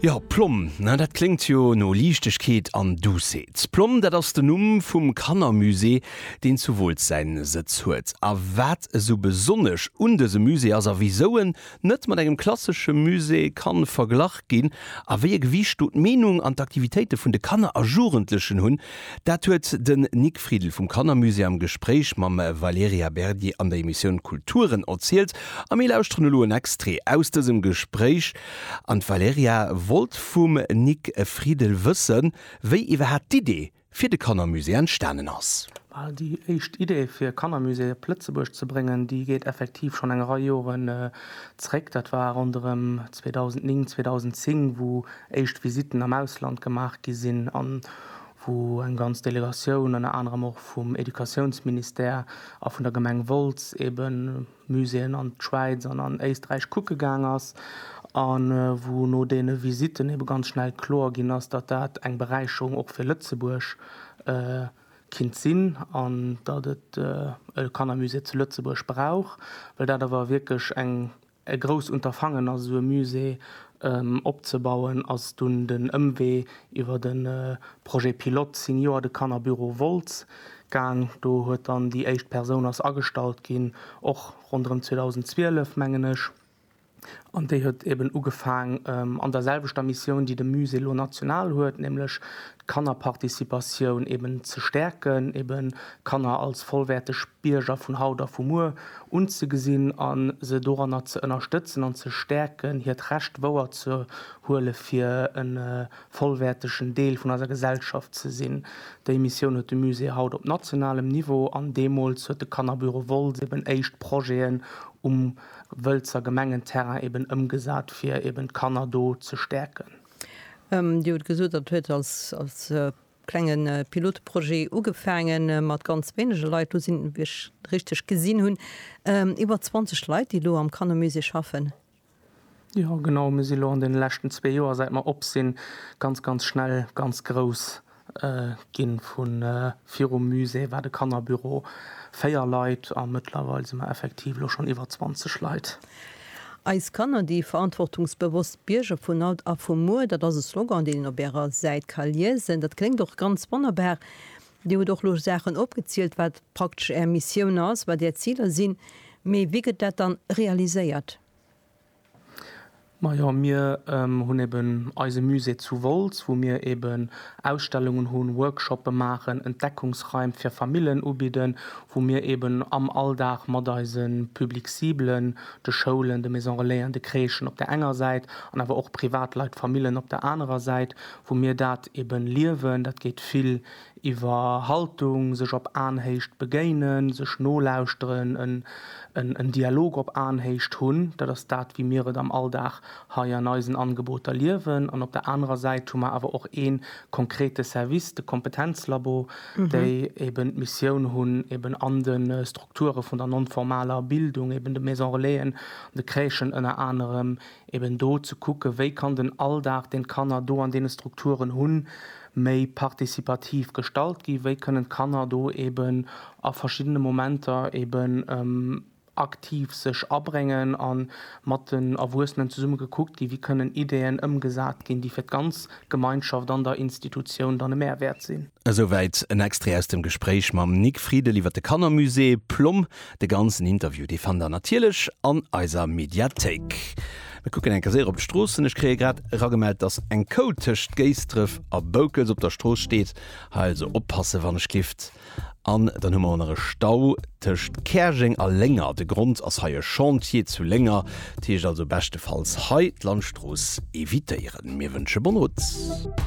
Jo, Plomm, na dat kléngt jo no Liichtegkeet an Duussheet. Plomm, dat ass den Numm vum Kannermusée, deen zu Wooltz säin Sëtz huet. A wat esou besonnesch un dësem Musée ass a wisou en net mat engem klassesche Musée kann verglach ginn a wéi e Gewiicht do d'Meenung an d'Aktivitéite vun de Kanner a Jugendlechen hunn, Dat huet den Nic Friedl vum Kannermusée am Gespréich mam Valerija Berdi an der Emissioun Kulturen erzielt a mir lauschteren elo en Extrait aus dësem Gespréich an d'Valerija wollt vum Nic Friedl wëssen, wéi iwwerhaapt d'Idee fir de Kannermusée entstanen ass. Well déi éischt Idee fir e Kannermusée op Lëtzebuerg ze bréngen, déi geet effektiv schonn eng Rei Joren zréck. Dat war ronderëm 2009, 2010, wou éischt Visitten am Ausland gemaach gi sinn. wou eng ganz Delegatioun, ënner anerem och vum Educatiounsministère a vun der Gemeng Wolz, ebe Muséeën an d'Schwäiz an an Éisträich kucke gaang ass a wou no deene Visitten ebe ganz schnell kloer ginn ass, datt dat eng Beräicherung och fir Lëtzebuerg kinnt sinn an datt et e Kannermusée zu Lëtzebuerg brauch, well dat awer wierklech eng E grousst Unterfangen ass esou e Musée opzebauen, ass dunn den Ëmwee iwwer de Projet pilote Senior de Kannerbüro Wolz gaang. Do huet dann déi éischt Persoun ass agestallt ginn, och ronderëm 2012 mengen ech, an déi huet eben ugefaang an der selwechter Missioun déi de Musée elo national huet, nämlech d'Kannerparticipatioun eben ze stäerken, eben d'Kanner als vollwäerteg Bierger vun haut a vu muer unzegesinn a se doranner ze ënnerstëtzen an ze stäerken, hiert Recht wouer ze huele fir e vollwäertegen Deel vun eiser Gesellschaft ze sinn. Déi Missioun huet de Musée haut op nationalem Niveau an deemools huet de Kannerbüro Woltz eben éischt Projeten um Wëlzer Gemengenterrain eben ëmgesat, fir eben d'Kanner do ze stäerken. Dir hutt gesot, dat huet als klenge Pilotprojet ugefaange mat ganz wéinege Leit, lo sinn, wa ech richteg gesinn hunn, iwwer 20 Leit, déi elo am Kannermusée schaffen. Jo, genau. Mir si lo an deene leschten zwee Joer, säit mer op sinn, ganz, ganz schnell ganz grouss Ginn vu virum Musée war de Kannerbüro 4 Leit a mëttlerweil si mer effektiv elo schonn iwwer 20 Leit. Eis Kanner, déi verantwortungsbewosst Bierger vun haut a vu muer, dat ass e Slogan, deen een op Ärer Säit ka liesen. Dat kléngt och ganz wonnerbar. Dir hutt och elo Saachen opgezielt, wat praktesch Är Missioun ass, wat Är Ziler sinn. Mee wéi gëtt dat dann realiséiert? Majo, mir hunn eben eise Musée zu Wolz, wou mir eben Ausstellungen hunn, Workshoppe maachen, Entdeckungsraim fir Famillen ubidden, wou mir eben am Alldag mat eise Public ciblen, de Schoulen, de Maison relaisen, de Crèchen op der enger Säit an awer och Privatleit, Famillen op der anerer Säit, wou mir dat eben liewen. Dat geet vill iwwer Haltung, sech op Aenhéicht begéinen, sech nolauschteren, en Dialog op Aenhéicht hunn, dat ass dat wéi mir et am Alldag hei an eisen Angeboter liewen, an op der anerer Säit hu mer awer och ee konkrete Service, de Kompetenzlabo, déi eben d'Missioun hunn, eben an de Strukture vun der non-formaler Bildung, eben de Maison-relaisen an de Crèchen ënner anerem, eben do ze kucken, wéi kann den Alldag, deen d'Kanner do an deene Strukturen hunn, méi participativ gestalt ginn, wéi kënnen d'Kanner do eben a verschiddene Momenter eben aktiv sech abréngen a mat den Erwuessenen zesumme gekuckt ginn, wéi kënnen Ideen ëmgesat ginn, déi fir d'ganz Gemeinschaft an der Institutioun dann e Mehrwäert sinn. Esouwäit en Extrait aus dem Gespréich mam Nic Friedel iwwer de Kannermusée Plomm. De ganzen Interview, dee fannt der natierlech an eiser Mediathéik. Mir kucken eng Kéier séier op d'Stroossen. Ech kréie grad eragemellt, dass eng Kou tëscht Géisdref a Boukels op der Strooss steet. Hei also oppasse wann ech kifft. An dann hu mer och nach e Stau tëscht Käerjeng a Lénger. De Grond ass hei e Chantier zu Lénger. Dat heescht also beschtefalls hei d'Landstrooss evitéieren. Mir wënsche bonne route.